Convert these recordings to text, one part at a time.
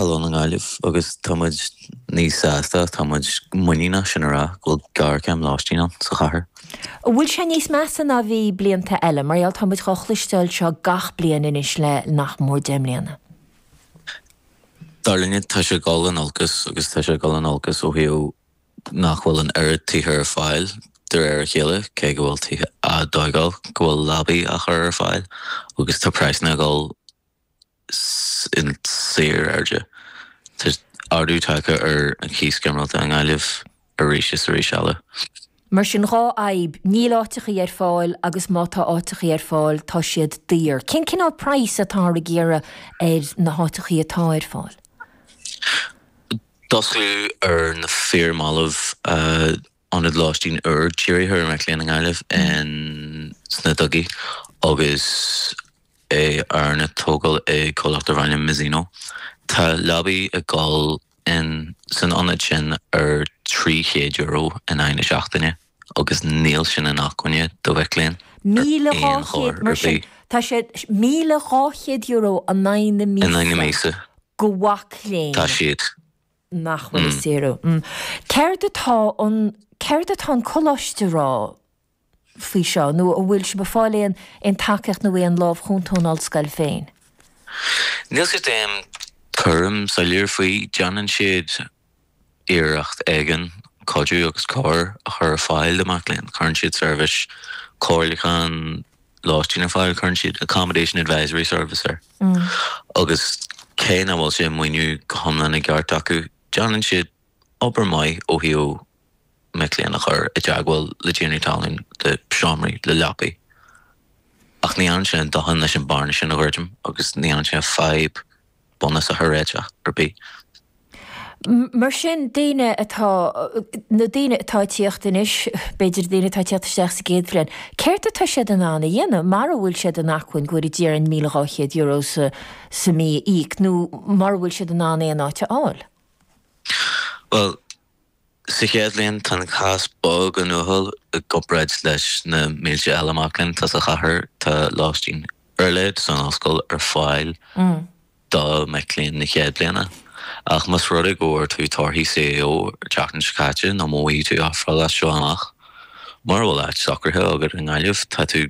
Ollscoil na Gaillimh agus tá muid níos sásta, tá muid muiníneach sin a rá, go bhfuil gearrchéim lóistín ann sa chathair. An bhfuil sé níos measa ná a bhí blianta eile? Mar gheall tá muid dhá chloisteáil seo gach bliain anois le nach mór deich mbliana. Dar linne, tá sé ag dul in olcas agus tá sé ag dul in olcas ó thaobh nach bhfuil an oiread tithe ar fáil de réir a chéile, cé go bhfuil tithe á dtóigáil, go bhfuil leapaí á chur ar fáil agus tá praghsanna ag dul. in síor-airde. Tá ardú tagtha ar an gcíos ginearálta i nGaillimh arís is arís eile. Mar sin, dhá fhadhb, níl áiteachaí ar fáil agus má tá áiteachaí ar fáil, tá siad daor. Cén cineál praghas atáthar ag iarraidh ar na háiteachaí atá ar fáil? D'osclaíodh ar na fíor-mhallaibh. Ionad lóistín úr dírithe ar mhic léinn i nGaillimh in sna Dugaí agus é arna tógáil ag comhlacht darb ainm Mezzino. Tá leapaí ag dul in san ionad sin ar €300 in aghaidh na seachtaine agus níl sin inacmhainne do mhic léinn ar aon chor ar bith. Tá sé €1,200 in aghaidh na míosa do mhac léinn. Tá siad. nach bhfuil ag saoradh. Céard atá an, céard atá an coláiste a rá faoi seo nó an bhfuil sibh ag fáil aon, aon tacaíocht nó aon lámh chúnta ón ollscoil féin? Níl siad an dtuairim soiléir faoi, déanann siad iarracht éigin cuidiú agus cabhair a chur ar fáil do mhac léinn, cuireann siad seirbhís comhairleacháin lóistín ar fáil, cuireann siad Accommodation Advisory Service uirthi, agus cé nach bhfuil sé maoinithe go hiomlán i gceart acu, déanann siad obair maith ó thaobh mic léinn a chur i dteagmháil le tiarnaí talún, le seomraí, le leapaí. Ach ní dhéanann sé a dhóthain leis an bearna sin a dhruidim, agus ní dhéanann sé an fhadhb. bhunúsach a réiteach ar bith. Mar sin, daoine atá, na daoine atá ag tíocht anois, b'fhéidir daoine atá ag tíocht isteach sa gcéad bhliain, céard atá siad in ann a dhéanamh, mara bhfuil siad in acmhainn go bhfuil, déarfaidh muid, €1,200 sa mí a íoc, nó mura bhfuil siad in ann aon áit a fháil? Bhuel, Sa chéad bhliain, tá an cás beagáinín uathúil i gcomparáid leis na mílte eile mac léinn atá sa chathair. Tá lóistín ar leith san ollscoil ar fáil do mhic léinn na chéad bhliana, ach más rud é go bhfuair tú torthaí CAO an tseachtain seo caite nó má théann tú a phlé leis as seo amach, mura bhfuil áit socraithe agat i nGaillimh, tá tú.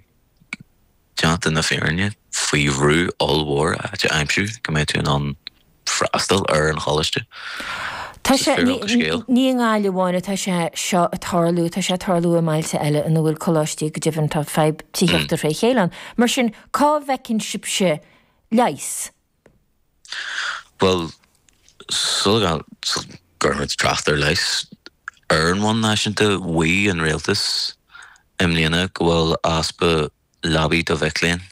Déanta na fírinne, faoi bhrú ollmhór áit a aimsiú go mbeidh tú in ann freastal ar an choláiste, Tá, is é fírinne an scéil, ní i nGaillimh amháin atá sé seo ag tarlú, tá sé ag tarlú i mbailte eile ina bhfuil coláistí, go deimhin tá fadhb tithíochta fré chéile ann. Mar sin, cá bhfeiceann sibhse leigheas? Bhuel, sula gcuirfimid trácht ar leigheas ar bhonn náisiúnta, mhaígh an rialtas i mbliana go bhfuil easpa leabaí do mhic léinn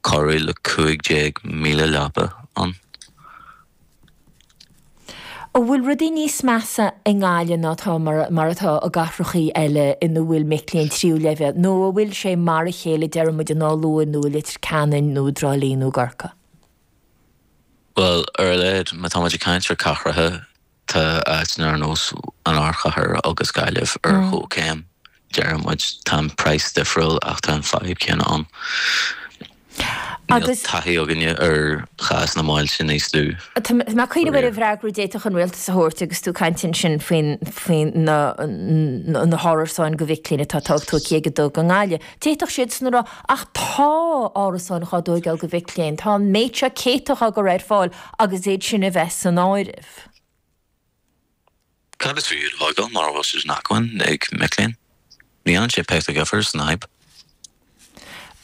cothrom le 15,000 leaba ann. An bhfuil rudaí níos measa i nGaillimh ná atá, mar atá i gcathrachaí eile ina bhfuil mic léinn tríú leibhéal, nó an bhfuil sé mar a chéile, déarfaidh muid, in Áth Luain nó i Leitir Ceanainn nó i dTrá Lí nó i gCorcaigh. Bhuel, ar a laghad, má tá muid ag caint ar chathracha, tá áiteanna ar nós an Ardchathair agus Gaillimh ar chomhchéim. Déarfaidh muid, tá an praghas difriúil ach tá an fadhb céanna ann. Níl taithí againne ar chás na mbailte níos lú. Tá mé ag cuimhneamh ar an bhfreagra a d'fhéadfadh an rialtas a thabhairt agus tú ag caint ansin faoi na hárasáin do mhic léinn atá tú ag iarraidh go dtógfaí i nGaillimh. D'fhéadfadh siadsan a rá, ach tá árasáin dhá dtóigeáil do mhic léinn, tá an méid seo céadta dhá gcur ar fáil agus iad sin a bheith san áireamh. Cad is fiú iad a thógáil mara bhfuil siad in acmhainn ag mic léinn? Ní dhéanann sé pioc de dhifear san fhadhb.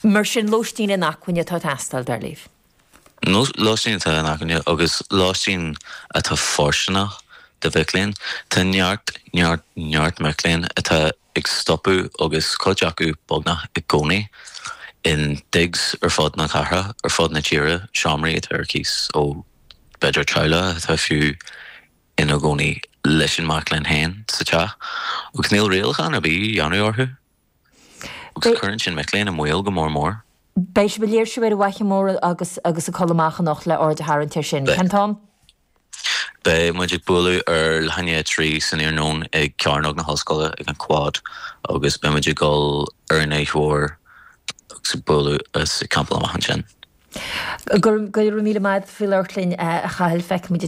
Mar sin, lóistín in acmhainn atá ag teastáil, dar libh? Nó lóistín atá in acmhainn agus lóistín atá fóirsteanach do mhic léinn? Tá neart, neart, neart mic léinn atá ag stopadh agus cuid acu beagnach i gcónaí in digs ar fud na cathrach, ar fud na tíre, seomraí atá ar cíos ó b'fhéidir teaghlaigh atá fiú ina gcónaí leis an mac léinn féin sa teach. Agus níl rialachán ar bith á dhéanamh orthu. Agus cuireann sin mic léinn i mbaol go mór mór. Beidh sibh ag léirsiú ar an bhFaiche Mór agus ag codladh amach anocht le aird a tharraingt air sin, cén t-am? Beidh muid ag bualadh ar leath i ndiaidh a trí san iarnóin ag Cearnóg na hOllscoile ag an Quad agus beidh muid ag dul ar an Fhaiche Mhór agus ag bualadh agus ag campáil amach ansin. Go raibh míle maith agat faoi labhairt linn, a Chathail. Feicfidh muid thú ansin.